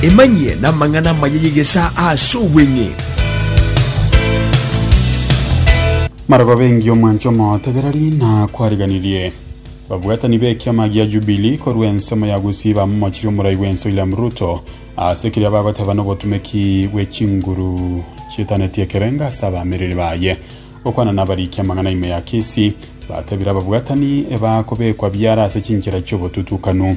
Emanyie namang'ana amaya y'egesaa ase obweng'e. Maraba bengi omwanche omotegereri na kwariganirie. Babwatani b'ekiama gia Jubilee korwa ensemo ya Gusii bamomochirie omorai bw'ense William Ruto ase keria bagoteba nobotumeki bwe chinguru chitaneti ekerengo ase abaamereri baye. Gokwana nabarikia amang'ana ime ya kesi, batebire ababwatani ebakobekwa biara ase chinchera chi'obotutukanu.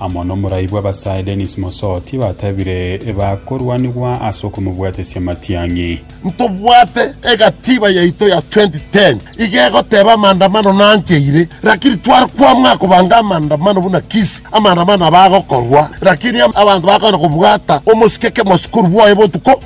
amo nomoraai bw'abasae Denis Mosoti batebire bakorwanigwa ase okomobwatesia amatiang'i. Ntobwate egatiba yaito ya 2010 iga egoteba amandamano nancheire lakini tware kwamua kobanga amandamano buna Kisii amandamano aba agokorwa lakini abanto bakogenda kobwata omosike kemosukuru bwoye botuko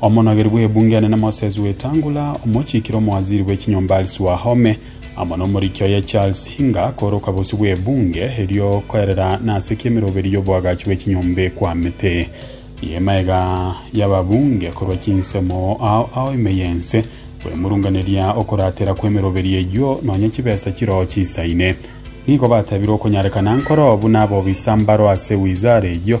Omonogeri bw'ebunge enene Moses Wetangula, omochiikire omowaziri bwe chinyomba Alice Wahome, amo nomoriki oye Charles Hinga kooroka bosio bw'ebunge erio koerera nase ki emeroberi y'oboagachi bwe chinyomba ekwamete. Y'emaega y'ababunge korwa chinsemo ao ao ime y'ense bw'emurunganeria okoratera kw'emeroberi eyio nonya chibesa chiroo chisaine. Nigo batabire okonyarekana nkoro buna abobisa mbaro ase wizara eyio,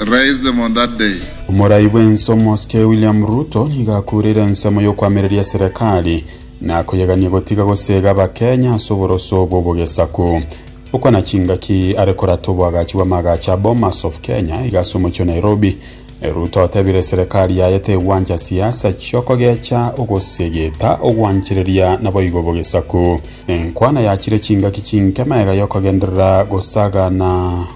raise them on that day. Omorai bw'ense omosike William Ruto nigo akureire ensemo y'okoamereria serekari na koyegania gotiga gosega abakenya ase oboroso bw'obogesaku. Okwa na chingaki are korata oboagachi bw'amaagacho a Bomas of Kenya iga ase omochie o Nairobi, Ruto otebire serekari yaye tegwancha siasa chiokogecha ogosegeta ogwanchereria naboigo obogesaku. Enkwana yachire chingaki chinke maega yokogenderera gosagana.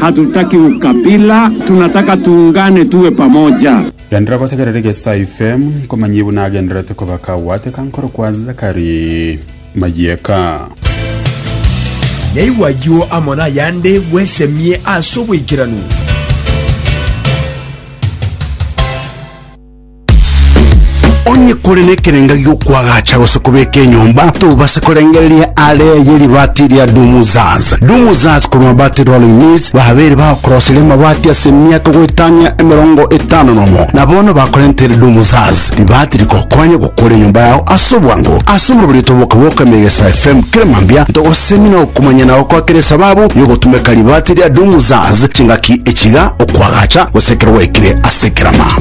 Hatutaki ukabila, tunataka tuungane tuwe pamoja. Genderera gotegerera egesaai fm nkomanyie buna agendererete koba kagwateka nkorokwa Zakari Mayeka. Nyaigwe ayio amo nayande bwesemie ase oboikeranu. Onye kore nekerenga gi'okwagacha gose kobeka enyomba, tobase korengereria aare y'eribati eria Dumuzaz. Dumuzaz korwa Mabati Rolling Mills babeire bagokoroseria amabati ase emiaka goetania emerongo etano nomo, na bono bakorentere Dumuzaz, ribati rigokonye gokora enyomba yao ase obwango. Ase omobori oito boka bwa Okamia Egesae FM kere mambia, ntogosemi na okomanya na gokoakera esababu y'ogotumeka ribati ria Dumuzaz chingaki echiga, okwagacha, gose ekero gwaikire ase ekerama.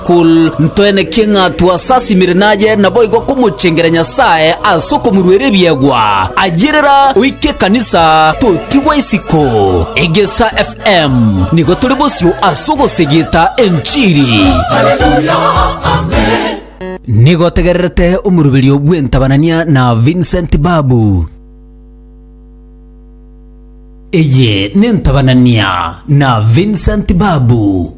Kol. Ntwenekie ng'a twasasimire naye, naboigo komochengera Nyasae ase okomoruera ebiegwa. Ayerera oike ekanisa, totigwa isiko. Egesa FM nigo tore bosio ase ogosegeta enchiri. Nigo otegererete omoruberio bw'entabanania na Vincent Babu. Eye n'entabanania na Vincent Babu.